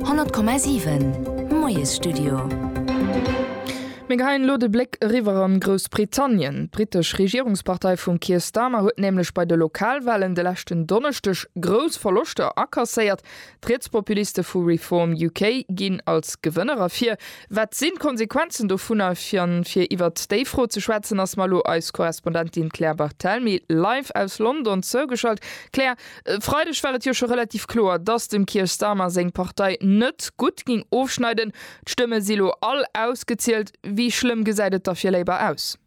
100,7 Moiesstudio. Mir geheien elo de Bléck eriwwer an Groussbritannien. D'britesch Regierungspartei vum Keir Starmer huet nämlech bei de Lokalwahlen de leschten Donneschdeg grouss Verloschter akasséiert. D'Rietspopuliste vu Reform UK ginn als Gewënner ervir. Wat sinn d'Konsequenzen dovunner? An fir iwwert déi Fro ze schwätzen, ass mer elo eis Korrespondentin Claire Barthelmy live aus London zougeschalt. Claire, E Freideg war et jo scho relativ kloer, datt dem Keir Starmer seng Partei net gutt géing ofschneiden. D'Stëmme si lo all ausgezielt. Wéi schlëmm gesäit et da fir Labour aus?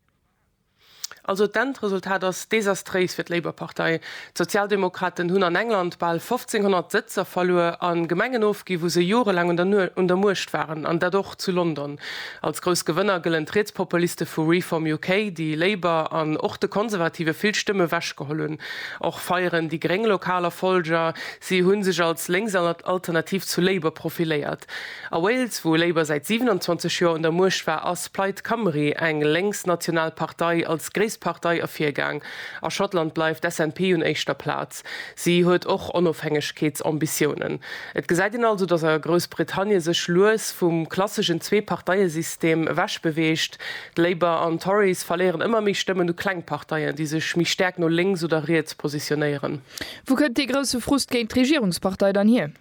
Also d'Endresultat ass desastréis fir d'Labour-Partei. D'Sozialdemokraten hunn an England bal 1500 Sëtzer verluer a Gemengen ofginn, wou se jorelaang un der Muecht waren, an dat och zu London. Als grouss Gewënner gëllen d'Rietspopuliste vu Reform UK, déi Labour an och de Konservative vill Stëmme wech geholl hunn. Och feieren déi Gréng lokal Erfolger, si hu sech als lénks Alternativ zu Labour profiléiert. A Wales, wou Labour säit 27 Joer un der Muecht war, ass Plaid Cymru, eng lénks national Partei, als gréisst Partei ervirgaang. A Schottland bleift d'SNP un éischter Plaz. West. Si huet och Onofhängegkeetsambitiounen. Et gesäit een also, datt a Groussbritannie sech lues vum klasseschen Zwee-Parteie-System ewech beweegt. D'Labour an d'Tories verléieren ëmmer méi Stëmmen u kleng Parteien, déi sech méi stäerk no lénks oder riets positionéieren. Wou kënnt dee grousse Frust géint d'Regierungspartei dann hier?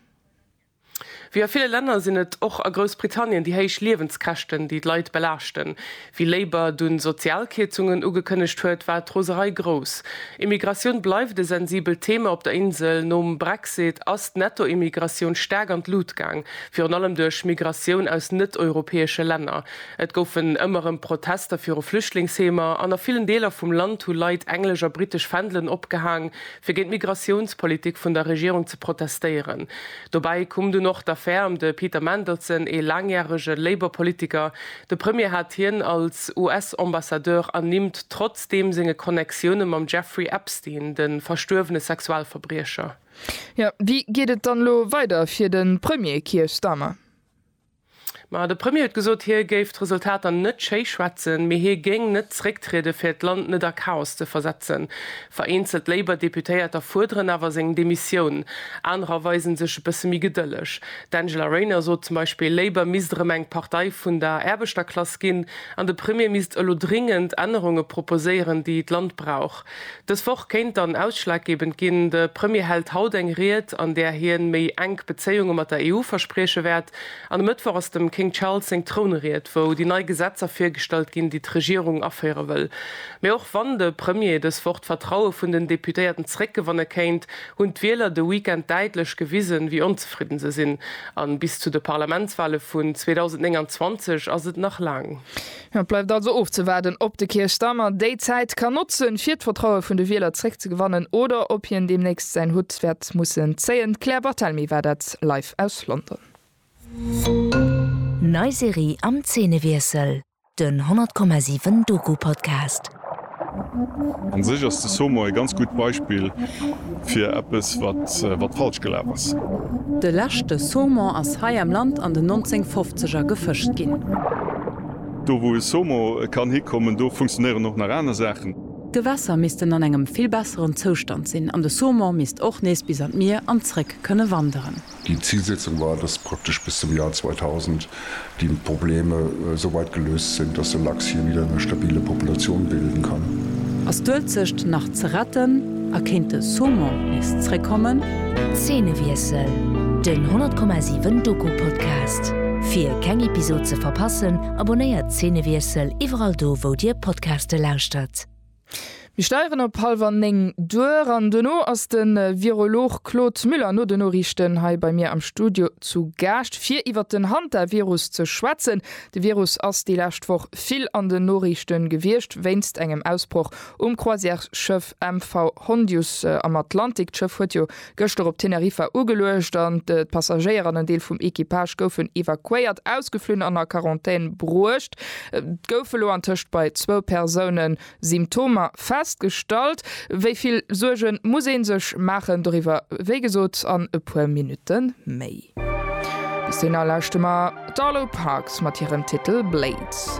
Wéi a ville Länner sinn et och a Groussbritannien déi héich Liewenskäschten, déi d'Leit belaaschten. Wie Labour dunn Sozialkierzungen ugekënnegt huet, war d'Roserei grouss. Immigratioun bleift e sensibelt Thema op der Insel. Nom Brexit ass d'Nettoimmigratioun staark an d'Lut gaang, virun allem duerch Migratioun aus net-europäesche Länner. Et goufen ëmmer erëm Protester viru Flüchtlingsheemer an a villen Deeler vum Land hu Leit englesch a britesch Fändelen opgehaang, fir géint d'Migratiounspolitik vun der Regierung ze protestéieren. Dobäi koum dunn och d'Affär ëm de Peter Mandelson, ee laangjärege Labour-Politiker. De Premier hat hien als US-Ambassadeur ernimmt, trotzdeem senge Connectioune mam Jeffrey Epstein, de verstuerwene Sexualverbriecher. Jo, wéi geet et dann elo weider fir de Premier Keir Starmer? Ma de Premier huet gesot, hie géif d'Resultater net schéi schwätzen, mee hie géing net zrécktrieden, fir d'Land net a Chaos ze versetzen. Vereenzelt Labour Deputéierter fuerderen awer seng Demissioun, anerer weisen sech e bësse méi gedëlleg. D'Angela Rayner sot zum Beispill, Labour misst erëm eng Partei vun der Aarbechterklass ginn an de Premier misst elo dringend Ännerunge proposéieren, déi d'Land brauch. Dës Woch kéint dann ausschlaggebend ginn. De Premier hält haut eng Ried, an där hien méi enk Bezéiunge mat der EU versprieche wäert. An e Mëttwoch ass dem King Charles seng Trounried, wou déi nei Gesetzer virgestallt ginn, déi d'Regierung aféiere wëll. Mee och wann de Premier dës Woch d'Vertraue vun den Deputéierten zeréckgewanne kéint, hunn d'Wieler de Weekend däitlech gewisen, wéi onzefridden se sinn. A bis zu de Parlamentswale vun 2029 ass et nach laang. Et bleift also ofzewaarden, ob de Keir Starmer déi Zäit kann notzen, fir d'Vertraue vun de Wieler zréckzegewannen, oder ob hien deemnächst säin Hutt wäert mussen zéien. D'Claire Barthelmy war dat live aus London. Nei Serie am Zeenewiessel, den 100,7 Doku-Podcast. An sech ass de Somo e ganz gutt Beispill fir eppes wat falsch gelaf ass. De leschte Saumon ass hei am Land an den 1950er gefëscht ginn. Do wou e Somo kann hikommen, do funktionéieren och nach aner Saachen. D'Gewässer missten an engem vill besseren Zoustand sinn an de Saumon misst och nees bis an d'Mier an zréck kënne wanderen. Déi Zilsetzung war, dass praktesch bis zum Jar 2000 déi Probleme esou weit geléust sinn, dass de Lachs hie wieder eng stabile Populatioun bilden kann. Ass d'Uelzecht nach ze retten a kéint de Saumon nees zréckkommen? Zeenewiessel, Den 10,7 Doku-Podcast. Fir keng Episod ze verpassen, abonnéiert Zeenewiessel iwwerall do wou dir Podcaste lauschtert. Mir steieren op hallwer néng duer an duerno ass de Virolog Claude Müller no de Noriichten hei bei mir am Studio zu Gaascht fir iwwer den Hantavirus ze schwätzen. De Virus ass déi lescht Woch vill an den Noriichte gewiescht wéinst engem Ausbroch um Croisièresschëff MV Hondius am Atlantik. D'Schëff huet jo Gëschter op Teneriffa ugeluecht an d'Passagéier an en Deel vum Equipage goufen evakuéiert, ausgeflunn an a Quarantän bruecht. Et gouf elo antëscht bei zwou Persoune Symptomer festgestallt. Wéi vill Suerge muss ee sech maachen? Doriwwer wéi gesot an e puer Minutte méi. Bis dohinner lauschte mer d'Arlo Parks mat hirem Titel Blades.